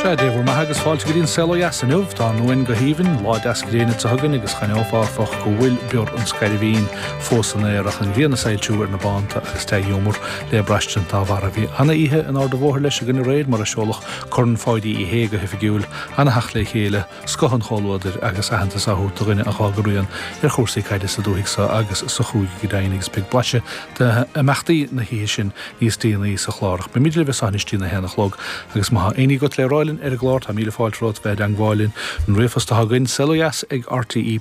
Sea, Dé bhur mbeatha agus fáilte go dtí an saol ó dheas inniu. Tá an uain go haoibhinn, lá deas gréine te chugainn agus d'aithneofá, áfach, go bhfuil bior an scairbhín fós san aer ach an ghrian ag soilsiú ar na bánta agus dea-ghiúmar le braistint dá bharr. Bhí ana-oíche in Ard an Bhóthair leis againn aréir mar a seoladh Corn Pháidí Uí Shé go hoifigiúil, ana-theacht le chéile, scoth an chomhluadair agus aitheantas á thabhairt do dhuine a dh'fhág a rian ar chúrsaí caide sa dúthaigh seo agus sa chúige go deimhin agus beidh blaiseadh d'imeachtaí na hoíche sin níos déanaí sa chlár ach beimid libh as so anois dtí'n a haon a chlog agus má thá éinní agat le rá linn ar an gclár tá míle fáilte romhat bheith i dteangmháil linn an ríomhphost atá againn, saolodheas ag rte.ie,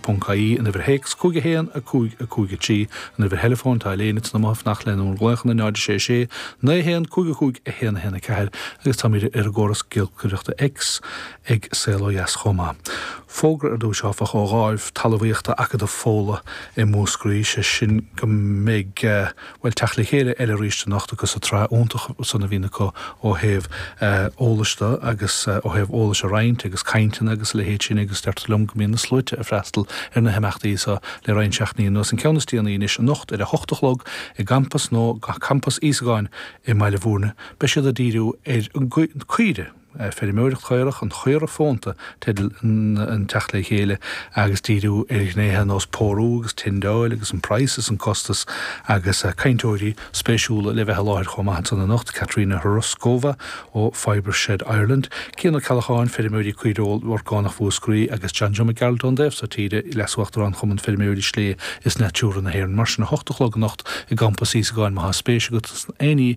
an uimhir théacs, 51 5 5 3, an uimhir theileafóin, tá Elaine insa mboth ag fanacht lenúr nglaochanna 0 6 6 9 1 5 5 1 1 4 agus táimid ar an gcóras giolcaireachta X ag Saol Ó Dheas chomh maith. Fógra ar dtús, áfach, ó Dháimh Talmhaíochta Acadamh Fódhla i Múscraí, sé sin go mbeidh, bhuel, teacht le chéile eile arís anocht acu sa tsraith iontach san a bhíonn acu ó thaobh eolais de agus ó thaobh eolais a roinnt agus cainteanna agus a leithéid sin agus deirtear liom go mbíonn na sluaite ag freastal ar na himeachtaí so le roinnt seachtainí anuas. An ceann is déanaí anois anocht ar a hocht a chlog i gCampas, nó Campas Íosagáin i mBaile Mhúirne, beidh siad ag díriú ar an gcaoire, Feirmeoireacht Chaorach, an chaora fónta teideal an teacht le chéile agus díriú ar ghnéithe ar nós pórú agus tindeáil agus an praghas is an costas agus cainteoirí spéisiúla le bheith i láthair chomh maith ansan anocht, Katerina Hroskova ó Fibreshed Ireland, Cian Ó Ceallacháin, Feirmeoirí Caoireoil Orgánach Mhúscraí agus John Joe Mac Gearailt ón dtaobh so tíre, Leasuachtarán Chumann Feirmeoirí Sléibhe is Natura na hÉireann. Mar sin, 8 a chlog anocht i gCampas Íosagáin má thá spéis agat in aon ní,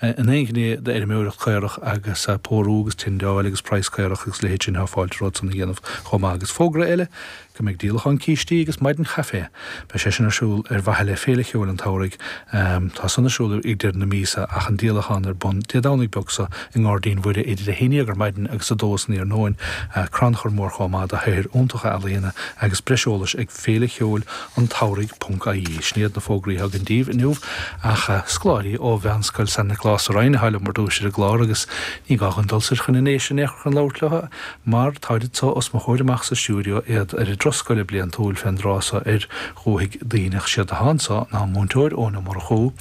in aon ghné d'fheirmeoireacht caorach agus pórú agus tindeáil agus praghas caorach agus a leithéid sin, tá fáilte romhat san a dhéanamh chomh maith. Agus fógra eile go mbeidh díolachán cístí agus maidin chaifé, beidh sé sin ar siúl ar mhaithe le Féile Cheoil an tSamhraidh, tá san ar siúl ag deireadh na míosa ach an díolachán ar bun Dé Domhnaigh beag so i nGairdín Mhuire idir a haon dhéag ar maidin agus a dó san iarnóin. Crannchur mór chomh maith do shaothair iontacha ealaíona agus breis eolais ag Féile Cheoil an tSamhraidh.ie. Sin iad na fógraí atá againn daoibh inniu. Ach scoláirí ó Mheánscoil San Nioclás sa Rinn atá liom ar dtúis ar an gclár agus ní gá dhúinn dul soir chun na nDéise in aon chor chun labhairt leo mar táid so os mo chomhair amach sa stiúideo, iad ar a dturas scoile bliantúil fén dtráth so ar Dhúthaigh Duibhneach. Siad atá anso ná Múinteoir Eoin Ó Murchú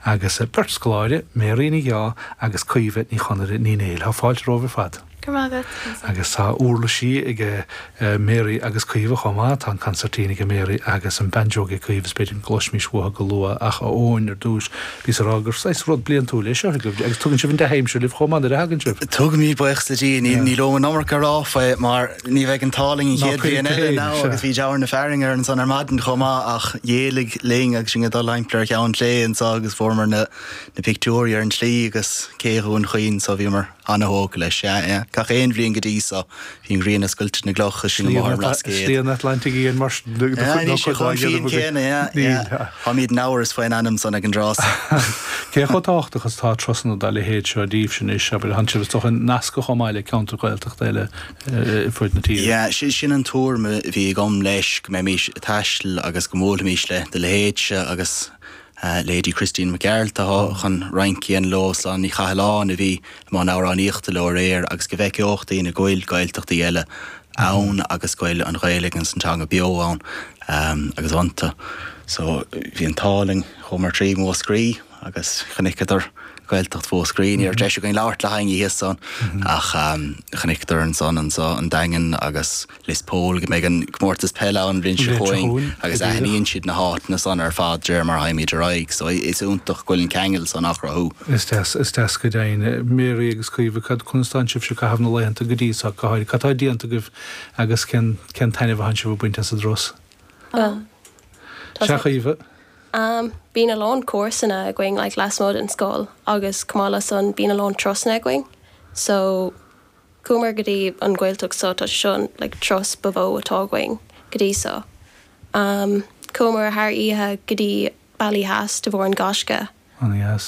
agus beirt scoláire, Mary Ní Dheá agus Caoimhe Ní Chonaire Ní Néill. Tá fáilte romhaibh ar fad. Agus tá úrlaisí ag Mary agus Caoimhe chomh maith, tá an concertina ag Mary agus an banjo ag Caoimhe, is b'fhéidir go gcloisfimis uathu go luath, ach a Eoin, ar dtúis, bhíos ag rá gur saghas rud bliantúil é seo, agus tugann sibh an dea-aimsir libh chomh maith nuair a thagann sibh. Tugaimid, baochas le Dia, níl uaim an iomarca a rá faoi mar ní bheidh an t-ádh linn an chéad bhliain eile ná, agus bhí dealramh na fearthainne air ansan ar maidin chomh maith, ach dh'éirigh linn agus sinn ag dul timpeall ar Cheann Sléibhe anso agus fuaireamar na pictiúirí ar an tslí agus Cé Dhún Chaoin so bhíomar. Ana-thógtha leis, sea é. Gach aon bhliain go dtí so, bhí an ghrian ag scoilteadh na gcloch is sinn go máthair an Bhlascaoid. Slí an Atlantaigh Fhiáin, mar sin de. Sea, níl sé chomh fiáin céanna, ea, ea. Táimid in amhras faoin ainm san ag an dtráth so. Cé chomh tábhachtach is atá turasanna dá leithéid seo díbhse anois, abair? Tánn sibh, is dócha, nasctha chomh maith le ceantar Gaeltachta eile ar fud na tíre? Sea, sin an tuairim a bhí agam, leis, go mbeimís ag taistil agus go mbuailfimís le do leithéidse agus, Leithéidí Christy Mac Gearailt a tháinig chun rince a dhéanamh leo, Sláine Ní Chathalláin a bhí i mbun amhránaíochta leo aréir agus go bhfeiceodh daoine go bhfuil Gaeltachtaí eile ann agus go bhfuil an Ghaeilge agus an teanga beo ann agus iontu. So bhí an t-ádh linn, chuamar trí Mhúscraí agus chonaiceadar Gaeltacht Mhúscraí. Ní raibh deis againn labhairt le héinne thíos ann ach chonaiceadar ansan anseo an Daingean agus. Lios Póil go mbeidh an comórtas peile ann an bhliain seo chugainn agus aithníonn siad na háiteanna san ar fad de réir mar a thagaimid ar aghaidh. So is iontach go bhfuil an ceangal san á chruthú. Is deas, is deas go deimhin. Mary agus Caoimhe, cad, conas atá sibhse ag caitheamh na laethanta go dtí seo, go háirithe? Cad atá déanta agaibh agus cén, cén taitneamh atánn sibh ag baint as an dtráth so, Caoimhe? Bíonn a lán cúrsanna againn like lasmuigh den scoil agus chomh maith le san bíonn a lán turasanna againn so, Chuamar go dtí an Ghaeltacht seo, tá sé seo an like turas ba mhó atá againn go dtí seo. Chuamar thar oíche go dtí Ballyhass de bharr an Gaisce agus.